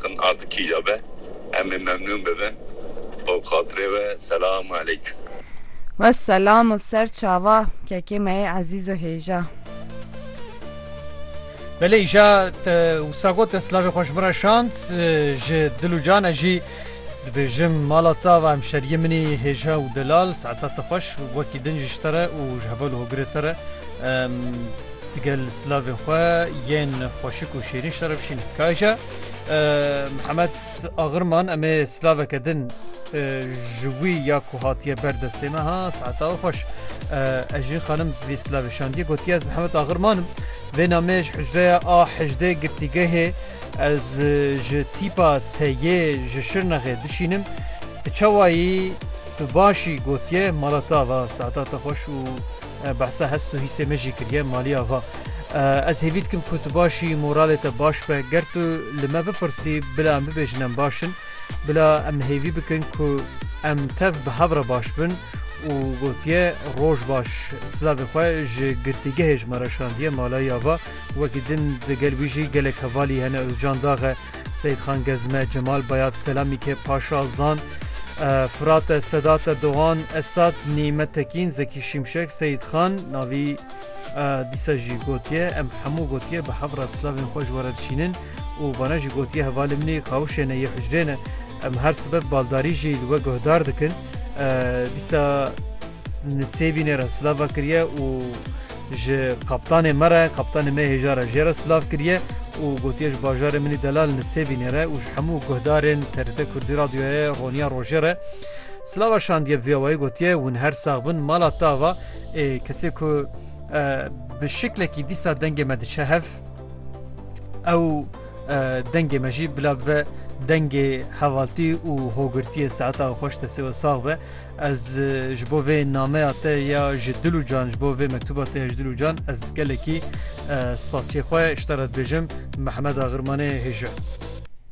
Kin ard kîja be em ê memnûn bibin. Bo xatirê we Selamu Eleykum. We selam û ser çava kekê me yê ezîz û hêja. Belê îşa te wisa got ez silavê xwe ji min re şand ji dil û cane jî dibêjim mala te ava hemşeriyê min î hêja û delal saeta te xweş wekî din jî ji te re û ji heval û hogirê te re em digel silavên xwe yên xweşik û şêrîn ji te re bişînin. Ka îşa. Mihemed Agirman em ê silaveke din ji wî ya ku hatiye ber destê me ha saeta xweş Ejîn xanim vî silavê şandiye gotiye ez Mihemed Agirmanim vê namê ji hicreya a hejdê girtîgehê ez ji tîpa te yê ji Şirnexê dişînim çawayî tu başî gotiye mala te ava saeta te xweş û Behsa hest û hîsê me jî kiriye. Maliya va, Ez hêvî dikim ku tu baş î, moralê te baş be. Ger tu li me bipirsî bila em bibêjin em baş in. Bila em hêvî bikin ku em tev bi hev re baş bin û gotiye, Roj baş. Silavê xwe ji girtîgehê ji me re şandiye. Malaiya va, Wekî din di gel wî jî gelek hevalî hene, Ozcan Daxe. Seyîdxan Gezme, Cemal Bayat, Selamîke Paşa, Zan, Firate, Sedate, Dogan, Esat, Nîmet Tekîn, Zekî Şimşek, Seyîdxan, navî dîsa jî gotiye em hemû gotiye bi hev re silavên xwe ji we re dişînin û vana jî gotiye hevalê min ê kawişê ne yê hicrê ne em her sibet baldarî jî li we guhdar dikin dîsa nisêbînê re silava kiriye û Ji kaptanê me re, kaptanê me hêja re jê re silav kiriye û gotiye ji bajarê min î delal Nisêbînê re û ji hemû guhdarên TRT Kurdî Radyoyê Roniya Rojê re silava şandiye bi vê awayî gotiye hûn her sax bin mala tava ê kesê ku bi şiklekî dîsa dengê me diçe hev ew dengê me jî bila bive dengê hevaltî û hogirtiyê saeta xweş destê we sax be Ez ji bo vê nameya te ya ji dil û can ji bo vê mektuba te ya ji dil û can ez gelekî spasiyê xwe ji te re dibêjim Mehmeda Xirmanê hêja.